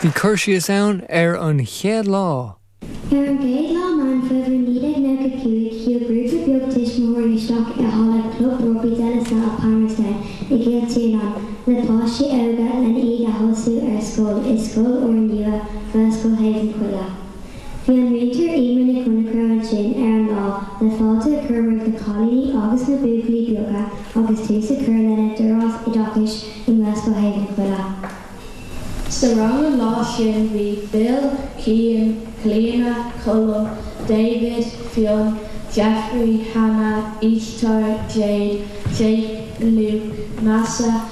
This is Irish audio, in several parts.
Bhí cur síos ann ar an chéad lá. Ar an gcéad lá Meán Fómhair 1995 shiúil grúpa beag tuismitheoirí isteach i halla Club Rugbaí De La Salle Palmerston i gCill Tiarnáin le páistí óga le hiad a thosú ar scoil i scoil úr nua Gaelscoil Thaobh na Coille. Bhí an múinteoir Emer Nic Chonchradha ansin ar an lá le fáilte a chur roimh na cailíní agus na buachaillí beaga agus tús a chur lena dturás oideachais i nGaelscoil Thaobh na Coille. Sa rang an lá sin bhí Bill, Cian, Clíona, Colm, David, Fionn, Jeffrey, Hannah, Éadaoin, Jade, Jake, Luke, Neasa,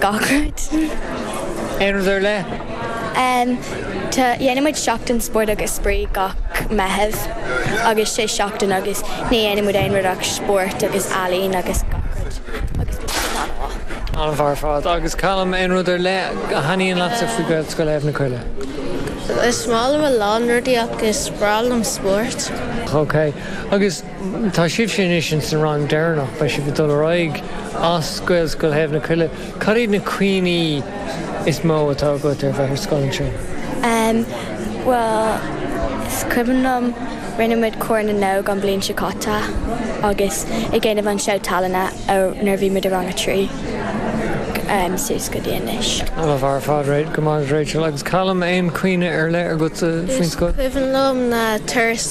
gach rud. Aon rud ar leith? Tá, déanann muid Seachtain Spóirt agus Spraoi gach Meitheamh agus is é seachtain agus ní dhéanann muid aon rud ach spórt agus ealaín agus gach rud agus tá siad an-mhaith. An-mhaith ar fad. Agus Calum, aon rud ar leith a thaitníonn leatsa faoi Ghaelscoil Thaobh na Coille? Is maith liom a lán rudaí ach is breá liom spórt. Ok. Agus Tá sibhse anois ins an rang deireannach. Beidh sibh ag dul ar aghaidh as Gaelscoil Thaobh na Coille. Cad iad na cuimhní is mó atá agat ar bheith ar scoil ansin? Em, bhuel, is cuimhin liom, rinne muid Cór na nÓg an bhliain seo caite agus ag déanamh an seó tallainne ó nuair a bhí muid i rang a trí, em, suas go dtí anois. An-mhaith ar fad, go maith, Rachel agus Callum, aon chuimhne ar leith agatsa faoin scoil? Is cuimhin liom na turais